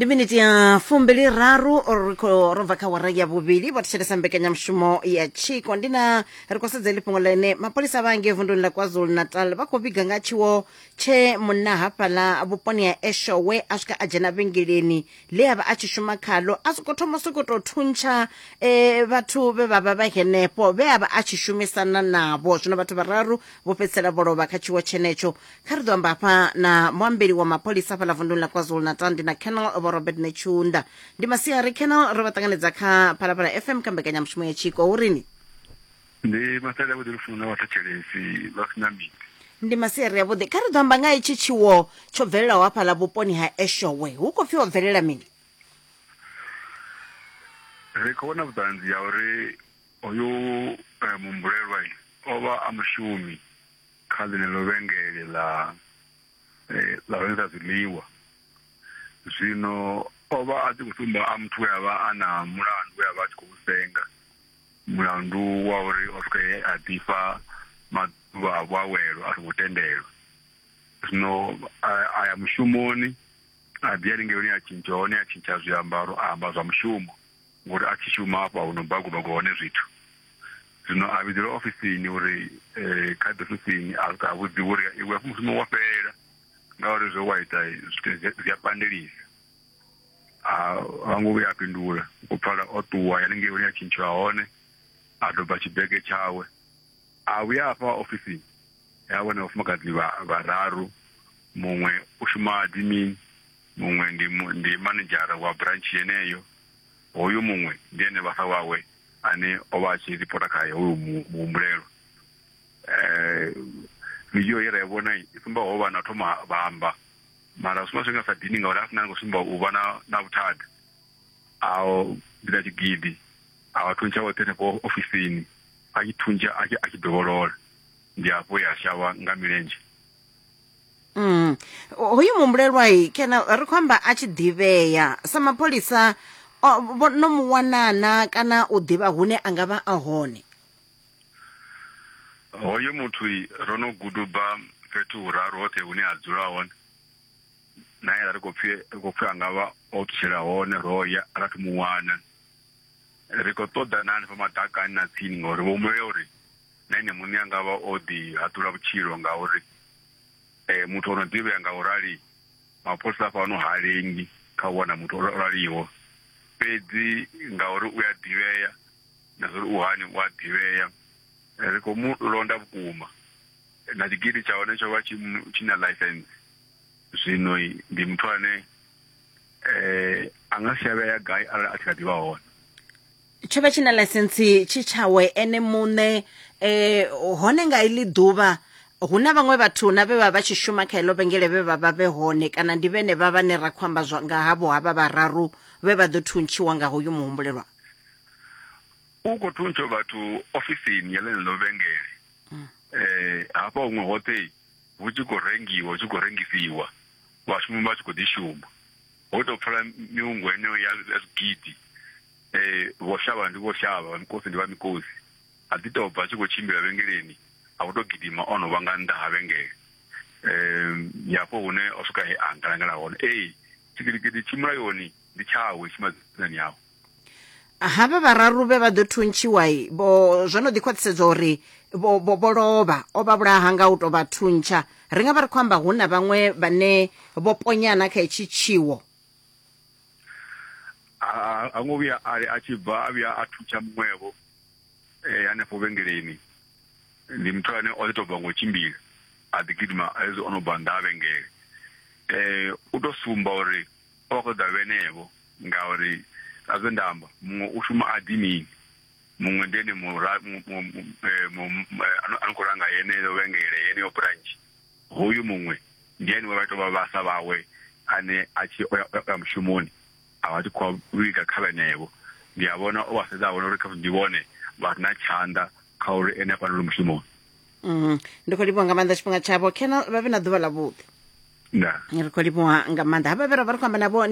ndi miniti ya fumbili raru ri khou ro bva kha wara ya vhuvhili vha thetshelesa mbekanyamushumo ya tshiko ndi na ri khou sedza ḽi fhungo ḽene mapholisa vha ngei vunduni ḽa kwazulu natal vha khou vhiga nga tshiwo tshe munna hafhaḽa vhuponi ha eshowe a swika a dzhena vhengeleni ḽe a vha a tshi shuma khalo a sokou thoma sokou tou thuntsha eh, vhathu vhe vha vha vha henefho vhe a vha a tshi shumisana navho zwino vhathu vhararu vho fhedzisela vho lovha kha tshiwo tshenetsho kha ri ḓo amba hafha na muambeli wa mapholisa hafhaḽa vunduni ḽa kwazulu-natal ndi na canal vho robert netshunda ndi masiari canal ro vha ṱanganedza kha phalaphala fm kha mbekanyamushumo ya tshiko hu rini ndi masale avhuḓi lufuno na vhathetshelesi vha sina miti ndi masiari avhuḓi kha ri ḓo amba nga itshi tshiwo tsho bvelelaho hafhaḽa vhuponi ha eshowe hu khou pfhi ho bvelela mini ri khou vhona vhuṱanzi ya uri hoyu eh, muhumbulelwa o vha a mushumi kha ḽeneḽo vhengele ḽa ḽa rengisa zwiḽiwa zwino o vha a tshi khou sumba a muthu we a vha a na mulandu we a vha a tshi khou senga mulandu wa uri o swika he a ḓifha maḓuvha a vhuawelo a songo tendelwa zwino a ya mushumoni a ḓi haningei hune a tshintsha hone a tshintsha zwiambaro a amba zwa mushumo ngori a thi shuma hafha hu no bagubagu hone zwithu zwino a vhidzelwa ofisini uri eh, kha ḓi ofisini a swika a vhudziwa uri iwe hafho mushumo wa fhela ngauri zwe wa ita zwithu zwi- zwi a pandelisa a a ngo vhuya a fhindula u pfala o ṱuwa ya lingei hune a tshintshiwa hone a doba tshibege tshawe a vhuya afha ofisini ya vhona vhafumakadzi vha- vhararu muṅwe u shuma dimini Muṅwe ndi mu, ndi manedzhara wa branch yeneyo. Hoyu muṅwe ndi ene vhafa wawe ane o vha a tshi ripota khae hoyu mu, muhumbulelwa. Eh, vidio ye ra i vhona i sumba ho vha na thoma vha amba mara zwi sumba zwi nga sa dini ngauri a sina ni khou sumba u vha na na vhuthada a bida tshigidi a vha thuntsha vhoṱhe henefho ofisini a tshi thuntsha a tshi a tshi dovholola ndi hafho ya shavha nga milenzhe mm. hoyu muhumbulelwa kana ri khou amba a tshi ḓivhea sa mapholisa no mu wanana kana u ḓivha hune a nga vha a hone hoyo muthu ro no guduba fhethu huraru hoṱhe hune a dzula hone na ye ri khou pfi ri khou pfi a nga vha o ṱutshela hone ro ya ra thu mu wana ri khou ṱoḓa na hanefha maḓakani na tsini ngori vho humbulele uri na ene muṋe a nga vha o ḓi haṱula vhutshilo ngauri muthu o no ḓivhea nga u rali mapholisa a fhano ha lengi kha u wana muthu o raliho fhedzi ngauri u a ḓivhea na zwa uri u hani u a ḓivhea ri khou mu londa vhukuma na tshigidi tsha hone tsho vha tshi tshi na license zwino ndi muthu ane a nga si a vheya gai arali a tshi kha ḓi vha hone tsho vha tshi na ḽaisentsi tshi tshawe ene muṋe um hone nga iḽi ḓuvha hu na vhaṅwe vhathu na vhe vha vha tshi shuma kha heḽo vhengele vhe vha vha vhe hone kana ndi vhene vha vhane ra khou amba nga havho havha vhararu vhe vha ḓo thuntshiwa nga hoyu muhumbulelwa u khou thuntsha vhathu ofisini ya ḽeneḽo vhengele um hafha huṅwe hoṱhe hu tshi khou rengiwa hu tshi khou rengisiwa vhashumi vha tshi khou ḓi shuma ho tou pfala miungo heneyo ya zwigidi Ee, vho shavha ndi vho shavha, vha mikosi ndi vha mikosi. A ḓi tou bva a tshi khou tshimbila vhengeleni, a vho tou gidima o no vha nga nnḓa ha vhengele. Ee, ndi hafho hune o swika he a ngalangala hone. Ee, tshigidigidi tshi mulayoni ndi tshawe, tshi madzinani awe. Havha vhararu vhe vha ḓo thuntshiwa vho zwo no ḓi khwaṱhisedza uri vho vho vho lovha o vha vhulaha nga u tou vha thuntsha ri nga vha ri khou amba hu na vhaṅwe vhane vho ponyana kha hetshi tshiwo ha ngo vhuya a a tshi bva a vhuya a thutsha muṅwevho eh, hanefho vhengeleni ndi muthu ane o ḓi tou bva ngo tshimbila a ḓi gidima hezwi o no bva nnḓa ha vhengele eh u to sumba uri o vha khou ḓa vhenevho ngauri a zwe nda amba muṅwe u shuma a ḓi mini muṅwe ndi ene eh, eh, ano khou langa yeneyo vhengele yeneyo branch Hoyu muṅwe ndi ene we vha tou vha vhasa vhawe ane a tshi o ya mushumoni a vha tshi khou vhiga kha vhenevho. Ndi a vhona o vha sedza a vhona uri khamusi ndi vhone vha re na tshanḓa kha uri ene a fhanelwe mushumoni. Mm, ndi khou livhuwa nga maanḓa tshifhinga tshavho kena vha vhe na ḓuvha ḽa vhuḓi nda ri khou livhuwa nga maanḓa havha vhe ra vha ri khou amba navho